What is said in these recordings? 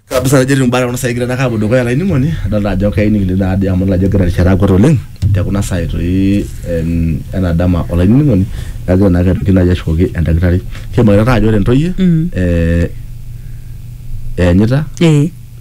kabisa ajo etiu imbaa kuna saai egira aapuo dukuya olainining'oni adolta ajo keyieu nikining taadi amu idol ajo egira erishata akwet oleng te kuna saai toi em ena dama olainining'oni kagira naake aitoki naaji ashukoki endakitari kimakita taa ajo ore intoyie eh eenyita Eh.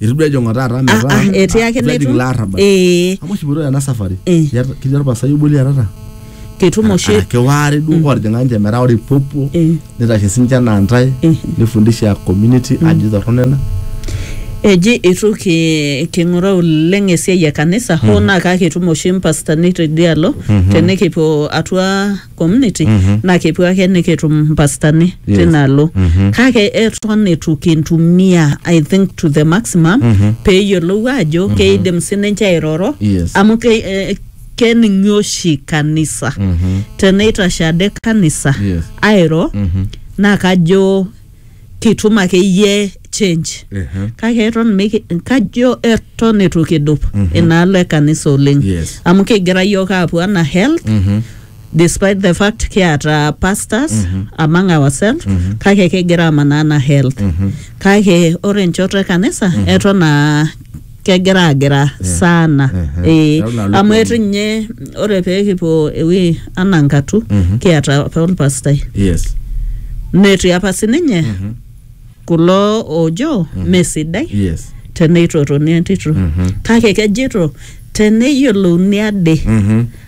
Eitu duo ejing'o taata Ah, metaa ah, etii ake eitu ejing leitu. ilo arrabal. Ee, Amu oshi ipoito ena safari. Eh. Iyata- Ketii olpasai obo liatata. ketum oshi Araki waare duo ootijing'a ninche metaa ore ipopuo Eh. nitashe sinche anaa ntae Eh. nifundisha community ajo torrono ena. eji itu ki- king'uraa oleng esiai e kanisa hoo naa kake etum oshi mpastani tedialo tenikipuo atua community naa kepuo ake nikitum mpastani Yes. tina alo kake eton eitu kintumia i think to the maximum peeyiolou ajo keidim sininche airoro Yes. amu ke, eh, kening'i oshi kanisa teneitashe ade kanisa Yes. airo naa kajo kitum akeyie change Ehe. kake eton miki- kajo eton eitu kidup inaalo e kanisa oleng Yes. amu kigira yiok aapuo ana health Mhm. despite the fact kiata pastors among ourselves kake kigira amanaa ana health kake ore enchoto e kanisa eton aa kegira agira sana eh, Kegira aluku. amu etu ninye ore pee kipuo ewuei anaa nkatu Mhm. kiata apa olpastai yes netii apa sininye Mhm. kulo oojo mesidai yes teneitotoni entito Mhm. kake kejito teneyiolouni ade Mhm.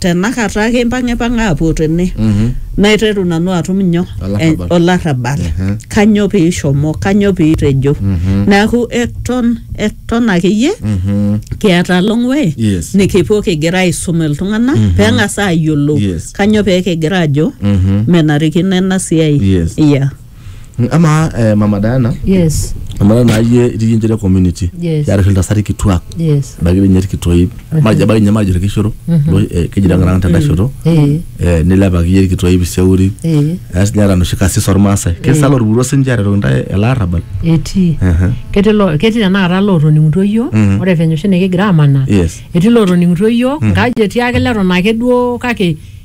tenakata ake impang'ipang'a aapuo tene naiteru nanu atum nyoo Olarrabal. Eh, olarrabal Mhm. kanyoo piishomo kanyoo piitejo neeku eton eton akeyie Mhm. kiata long way Yes. nikipuo kigira aisum iltung'anak peng'as aayiolou Yes. kanyoo pee kigira ajo Mhm. menarikino ena siai Yes. yeah. Mm, amaa eh, mama Diana yes amaa naa iyie itii iyie nchere community Yes. yaarashu iltasati kituak yes ebaiki dii ninye irkitoip majo ebaiki ninye majo irkishoro duo, eh, keji tenkaraki tenda shoto eh Eh, nilepaki iyie irkitoip iseuri eh eas ninye eeta noshi kasis ormaasai kisala orpuruo sinche aretoki intae ele arrabal etii Ehe. ketii lo- ketii tenakata lootoning'utuo iyiook Mhm. ore venye oshi nikigira amanaa Yes. etii lootoning'utuo iyiook nkaji etii ake leton ake duo kake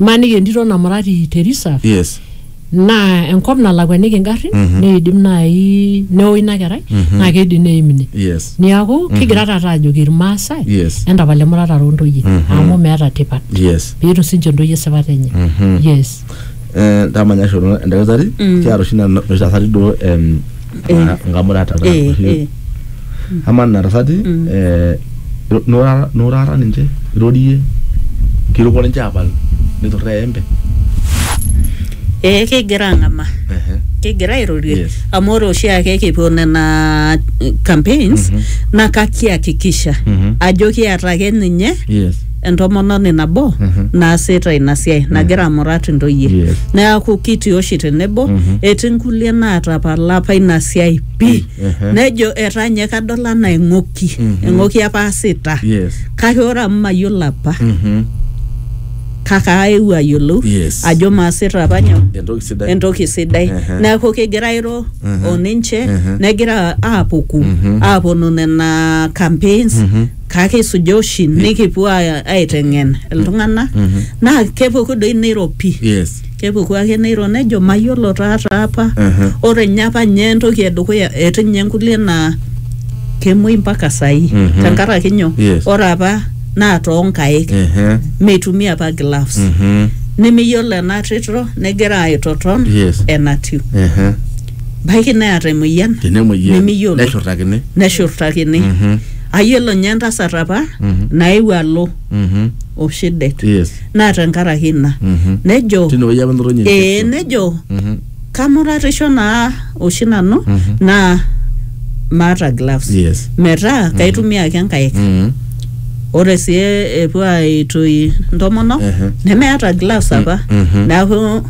Imaniki entito namurati te reserve yes naa enkop nalakuaniki ingarrin neidim naaji neo ina kerai naa keidim neim ine yes niaku kigira taata ajoki irmaasai Yes. entapal emuratare ontoyie amu meeta tipat yes peetum sinche intoyie esipata enye yes Eh, ndamanya shoto endakitari kiata oshi nena- noshi tasati duo em, Eh. na- nkamurata ta- Eh, oshi- eh. amaa nena tasati eh, iro- nurara nurara ninche irorie kiruko ninche apal niturraa eembe ee kegira ang'ama Ehe. kegira airorie Yes. amu ore oshiake kipuo nena eh, campaigns Mhm. naa kakihakikisha Mhm. ajo kiata ake ninye yes entomononi nabo Mhm. naasita ina siai nagira amurat intoyie Yes. neaku kitii oshi tenebo Mhm. etii nkulie naatapala apa ina siai pii Ehe. nejo etaa nye kadol anaa eng'oki Mhm. eng'oki apa aasita Yes. kake ore amu mayiolo apa Mhm. kake aewuo ayiolou Yes. ajo maasita apa nyoo Entoki sidai. entoki sidai Ehe. neeku kegira airo Ehe. oninche Ehe. negira aapuku Mhm. aaponu nena campaigns Mhm. kake isuja oshi nikipuo aa- aiteng'en iltung'anak Mhm. naa kepuku doi neiropi Yes. Kepuku ake neiro nejo mayiolo taa taa apa. Ore ninye apa ninye entoki edukuya etii ninye inkulie naa kemuoi mpaka saai tenkaraki nyoo? Yes. Ore apa naa toonkaik Ehe. meitumia apa gloves. Mhm. Nemeyiolo ena tito negira aitoton Yes. enatiu. Ehe. Baiki neeta emoyian Tenemuoyian nemiyiolo neshurtakini. neshurtakini. Mhm. Ayiolo ninye entasat apa Mhm. naewuo alo Mhm. oshi det. Yes. naa tenkaraki ina Mhm. nejo Tine wueji apa enotoinye ee Ezekiel. nejo Mhm. kamuratisho naa oshi nanu Mhm. naa maata gloves Yes. metaa kaitumia ake nkaik Mhm. ore sii epuo aitoi ntomonok Ehe. nemeeta gloves apa Mhm. neeku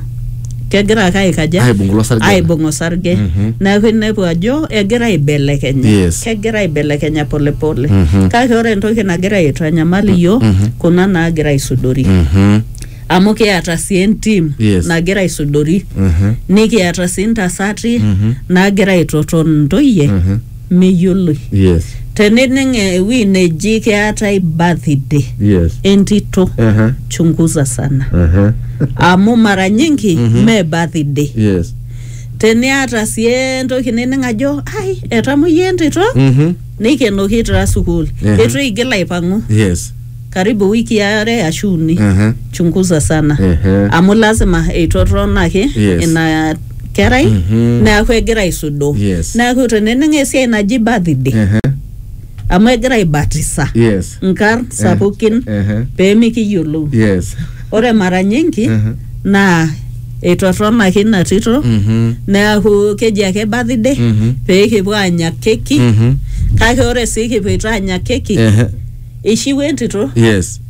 kegira ake aikaja Aibung ilo sarge. aibung osarge Mhm. neeku inepu ajo egira aibelekenya Yes. kegira aibelekenya polepole Mhm. kake ore entoki nagira aitanyamal iyiok Mhm. kuna naagira aisudori Mhm. amu kiata sii entim Yes. nagira aisudori Mhm. nikiata sii ntasati Mhm. naagira aitoton ntoyie Mhm. meyioloi yes tenining ewueji neji keetae birthday yes entito aha chunguza sana aha amu mara nyingi Mhm. me birthday yes teniata sii entoki nining ajo ai etamoyia entito mhm neikenoki itaa sukuul Ehe. eitu eigil aipang'u yes karibu wiki are ashu uni Ehe. chunguza sana Ehe. amu lazima eitotonaki Yes. ina kerai Mhm. neaku egira aisudoo Yes. neaku tenening esiai naji birthday Ehe. amu egira aibatisa Yes. nkarn sapukin Ehe. pemikiyiolou Yes. ore mara nyingi Ehe. naa eitotonaki ina tito Mhm. neaku keji ake birthday Mhm. pee kipuo anya keki Mhm. kake ore sii kipuoito anya keki Ehe. eishiwuo entito yes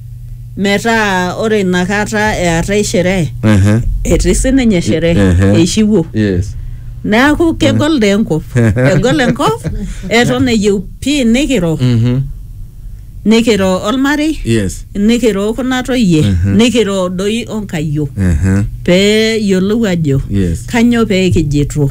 metaa ore inakata eetae sherehe Ehe. etii sininye sherehe Ehe. eishiwuo yes neeku kegol dee enkop egol enkop eton eyieu pii nikiro Mhm. nikiro olmarei yes nikiro kuna toyie Mhm. nikiro doi onkayiok Ehe. pee yiolou ajo yes kanyoo pee kijito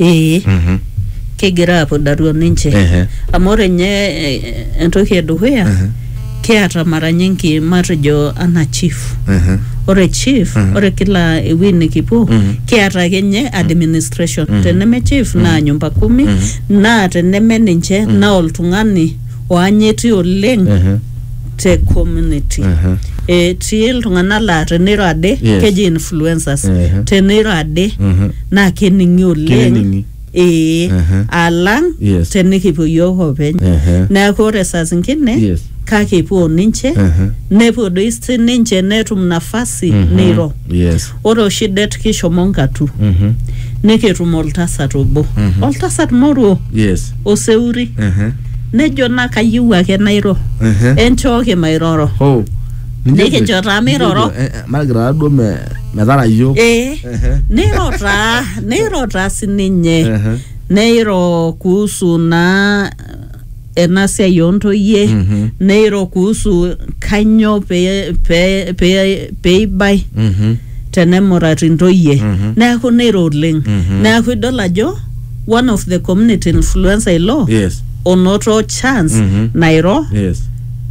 Ee. Mhm. Kigira apudari oninche. Ehe. Amu ore nye eh, entoki edukuya, Ehe. kiata mara nyingi matejo ana chief. Ehe. Ore chief, Mhm. ore kila ewuei nikipuo, Mhm. kiata ake nye administration. Mhm. Teneme chief, naa nyumba kumi, Mhm. naa teneme ninche, naa oltung'ani oanyiti oleng Ehe. te community Ehe. etii iltung'anak laa teneiro ade Yes. keji influencers Ehe. teneiro ade Mhm. naa kening'i oleng Kening'i. ee Ehe. alang Yes. tenikipuo yiok openy Ehe. neeku ore saa zingine Yes. kake epuo ninche Ehe. nepuo doi sininche netum nafasi Mhm. neiro Yes. Ore oshi det kishomo Ngatu Mhm. nikitum oltasat obo. Mhm. Oltasat moruo Yes. oseuri. Ehe. Nejo naa kayieu ake nairo. Ehe. Enchooki mairoro. Oh. ninche ejo- Nikijo taa ninche ejo, miroro. eh, eh, Margaret taa duo me- metara iyiok. Ee. Ehe. Neiro taa, neiro taa sininye. Ehe. Neiro kuhusu naa ena siai oo ntoyie Mhm. neiro kuhusu kanyoo pee pee pee peibai Mhm. tenemurati ntoyie Mhm. neeku neiro oleng Mhm. neeku idol ajo one of the community influencer ilo Yes. onoto chance Mhm. nairo Yes.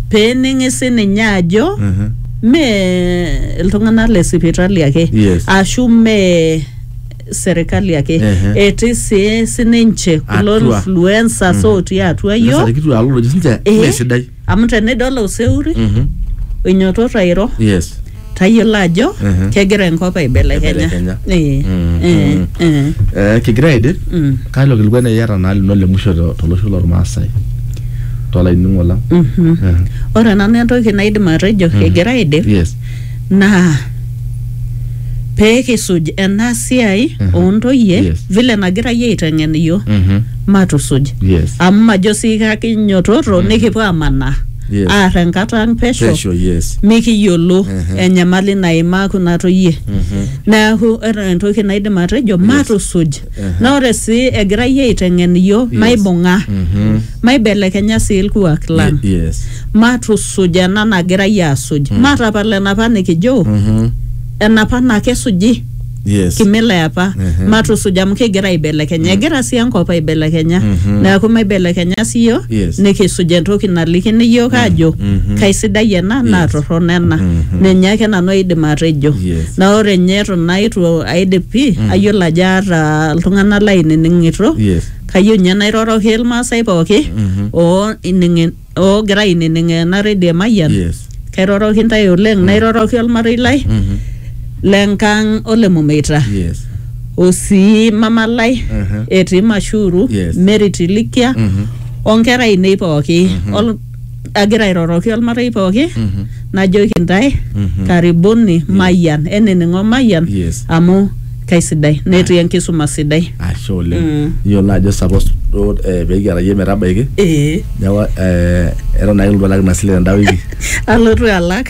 pening'i sininye ajo Mhm. mee iltung'anak le sipitali ake Yes. ashu mee serikali ake Ehe. etii sii sininche kulo Atua. influencers otii atua Sasa yiok kitu alo lojo sinche Eh. mee sidai. amu tenidol oseuri Mhm. oinyototo airo Yes. tayiolo ajo Ehe. kegira enkop aibelekenya Aibelekenya. Eh, Mm, eh, mm. eh, Eh, kigira aidip mm, kalo kilikuan eyiata naa lino le musho to- tolosho lormaasai tolainining'o lang mhm. Eh. ore nanu entoki naidim atejo egira aidip Yes. naa pee kisuj ena siai Mhm. oontoyie Yes. vile nagira yie aiteng'en iyiook Mhm. matusuj Yes. amu majo sii kakinyototo nikipuo amanaa Yes. aar enkata ang pesho Pesho, yes. mikiyiolo Mhm. enyamali naimaa kuna toyie Mhm. neeku ore entoki naidim atejo matusuj naa ore sii egirai aiteng'en iyiook maibung'a maibelekenya sii ilkuak lang Ye- yes matusuj ena nagirai aasuj matapal enapa nikijo enapa naa kesuji yes kimila eapa Mhm. matusuj amu kigira aibelekenya egira sii enkop aibelekenya neeku maibelekenya sii iyiook Yes. nikisuj entoki nalikini iyiook aajo kaisidai ena naa torrono ena ninye ake nanu aidim atejo Yes. na ore nye eton aitu aidip pii ayiolo ajo aata iltung'anak lainining'ito Yes. kayieu ninye nairoroki ilmaasai pooki oo ining'in- oogira ainining ena redio emayian Yes. kairoroki ntae oleng nairoroki olmarei lai Mhm. lenkang ole mumeita Yes. osii mama lai Mhm. etii mashuru Yes. mary tilikia Mhm. onkera ainei pooki Ol- agira airoroki olmarei pooki Mhm. najoki ntae Mhm. karibuni mayian enining'o mayian Yes. amu kaisidai netii enkisuma sidai ashe oleng Mm. iyiolo naa ajo suppose duo eh, pekiata yie metabaiki ee neeku eh, eton ake iltu alak ina sile tenda wiki alotu alak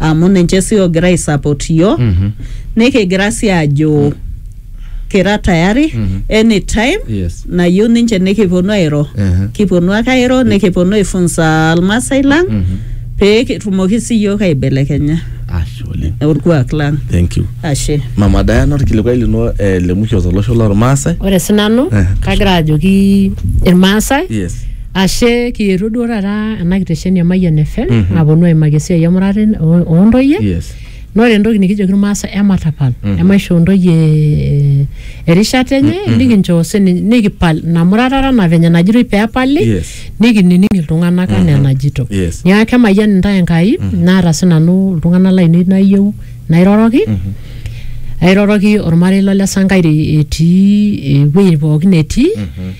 amu ninche sii oogira aisupport iyiook Mhm. nikigira sii aajo kira tayari Mhm. anytime Yes. nayieu ninche nikiponu airo Ehe. kiponu ake airo nikiponu aifunza almasai lang Mhm. pee kitumoki sii iyiook aibelekenya Ashe oleng. orkuak lang Thank you. ashe Mama Diana orkilikwai lino eh, le mwisho tolosho lormaasai. Ore sinanu Eh. kagira ajoki irmaasai Yes. Ashe kietuo duo taata ena kitesheni e Mayian FM Mhm. aponu aimaki esiai emurata en- o- oontoyie Yes. na ore entoki nikijoki irmaasai ematapal Mhm. emaishoo ntoyie eh, erishata enye Mhm. nikinchoo sininye nikipal ina muratata na venye najitoi peepali Yes. nikinining iltung'anak anaa Mhm. enajito Yes. niaku kemayian intae Enkai naata sinanu iltung'anak lainei nayieu nairoroki Mhm. airoroki ormarei lo le Sankaire etii ewueji pookin etii Mhm.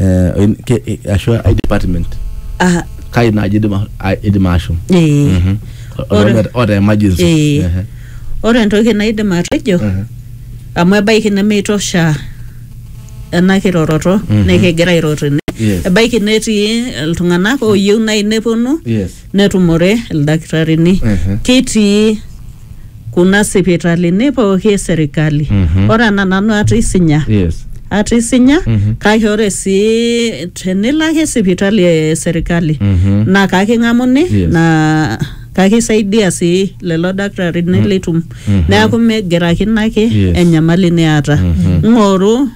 eh, in- ke- eh, ashu ai department Ah, kai naaji idim a- a- idim ashom eh. Mhm. Ore- Oota- oota emergency Eh. Ehe. ore entoki naidim atejo Mhm. amu ebaiki nemeitosha ena kiroroto Mhm. nikigira airoro ene Yes. ebaiki netii iltung'anak ooyieu nai neponu Yes. netumore ildakitarini Mhm. ketii kuna sipitalini pooki e serikali Mhm. ore ena nanu aata isinya yes aata isinya Mhm. kake ore sii tenilo ake sipitali e serikali Mhm. naa kaking'amuni Yes. naa kakisaidia sii lelo dakitarini litum Mhm. neeku migirakino ake Yes. enyamali niata Mhm. ng'oru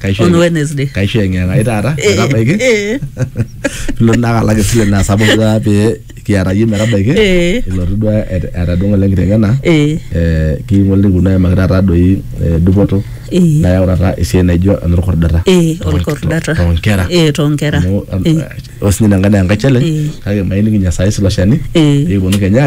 Kaisho on eng'e- Wednesday. kaisho eng'eng'a ai taata Eh, metabaiki eh, pilo naa kalak esile naa sapuk duo pee kiata yie metabaiki Eh. ilotu duo et- etadung'o le nkiteng'ena eh, eh, king'ole kuna aimaki taata doi eh, dupoto Eh. nayau taata esiai naijo enorkordata eh, Too- olkordata. too nkera Eh, too nkera. Amu, am- Eh, osinye ina nkae naa enkae challenge Eh. kake mailiki nyasaye silo shani Eh. pee eponu kenya